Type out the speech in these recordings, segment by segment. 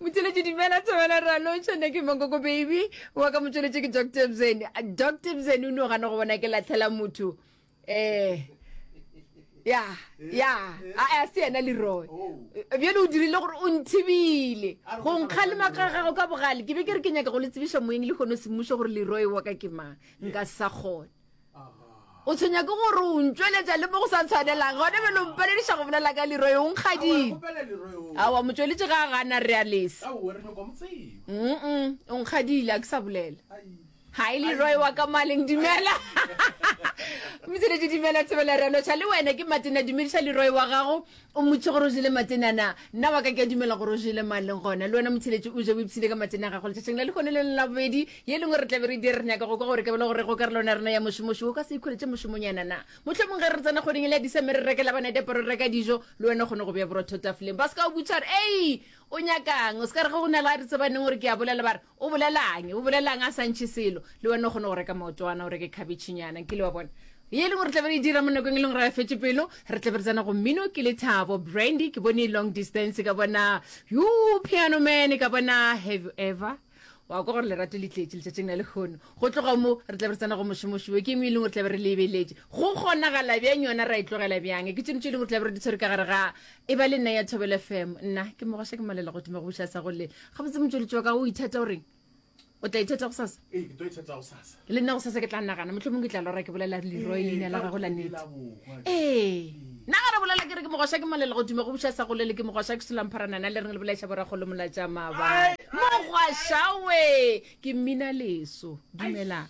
motšweletši dumela thobela ralotšha ne ke mokoko baby wa ka motšweletši ke doctor bzen doctor bzen o ne o gana go bona ke latlhela motho um ya ya a se yena leroy bjale o dirile gore o nthibile go nkga le makagago ka bogale ke be ke re ke nyaka go le tsebiša moeng le kgone semmušo gore leroy wa ka ke mang nka sa kgona o tshwenya ke gore o ntšweletša le mo go sa tshwanelang gone be lo mpalediša go bolela ka leroe o nkgadile awa motsweletše ga a gana re a lesa mm o nkgadile a ke sa bolela ga e leroe wa ka maleng dumela motsweletše dumela tsebela re a lotšha le wena ke matena dumediša leroe wa gago O mmotšiše gore o jele matena na. Nna wa ka ke a dumela gore o jele mang leng gona. Le wena motheletši o je o ipshile ka matena a gago letšatšing la lehono le leng la bobedi. Ye lengwe re tla be re dire re nyaka go kwa gore ke bela gore go karolo na rena ya mošomoši o ka se ikholetše mošomonyana na. Mohlomong ge re tsena kgweding ya Diseme re rekela bana diaparo re reka dijo le wena o kgone go bea borotho tafoleng ba se ka go butša gore, Ei! O nyaka'ng? O se ka re ge go na le a re tsebaneng gore ke a bolela ba re, O bolela'ng? O bolela'ng a sa ntšhe selo? Le wena o kgona go reka maotwana, o reke khabetšhinyana, nkile wa bona? Ye e leng gore re tla be re e dira mo nakong e leng gore a fetše pelo, re tla be re tsena go mmino. Ke Lethabo Brandy, ke bone Long Distance, ka bona Yoo Piano Man, ka bona Have You Ever. Wa kwa gore lerato le tletše letšatšing la lekgono. Go tloga mo, re tla be re tsena go Mošomoši wo, ke eng e leng gore tla be re lebeletše? Go kgonagala bjang yona? Ra e tlogela bjang? Ke tšone tše e leng gore tla be re di tshwere ka gare ga E ba le nna ya Thobele FM. Nna ke Mogosha ke malela go dima go buša sa go le. Gabotse motšweletši wa ka o ithata o reng? O tla ithata go sasa? Ee, ke tlo ithata go sasa. Le nna go sasa ke tla nagana motlho mongwe ke tla lora ke bolela leroy leina la gago la nete. Ee. Nna ga re bolela ke re ke mogosha ke malela go dima go buša sa go le le ke mogosha ke sulampharanana le reng le bolaiša borakgolo molatša maba. Mogwashawe ke mmina leso. Dumelang.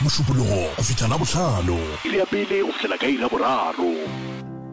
Mošupologo go fihla Labohlano. Iri ya pele go fihlela ka iri ya boraro.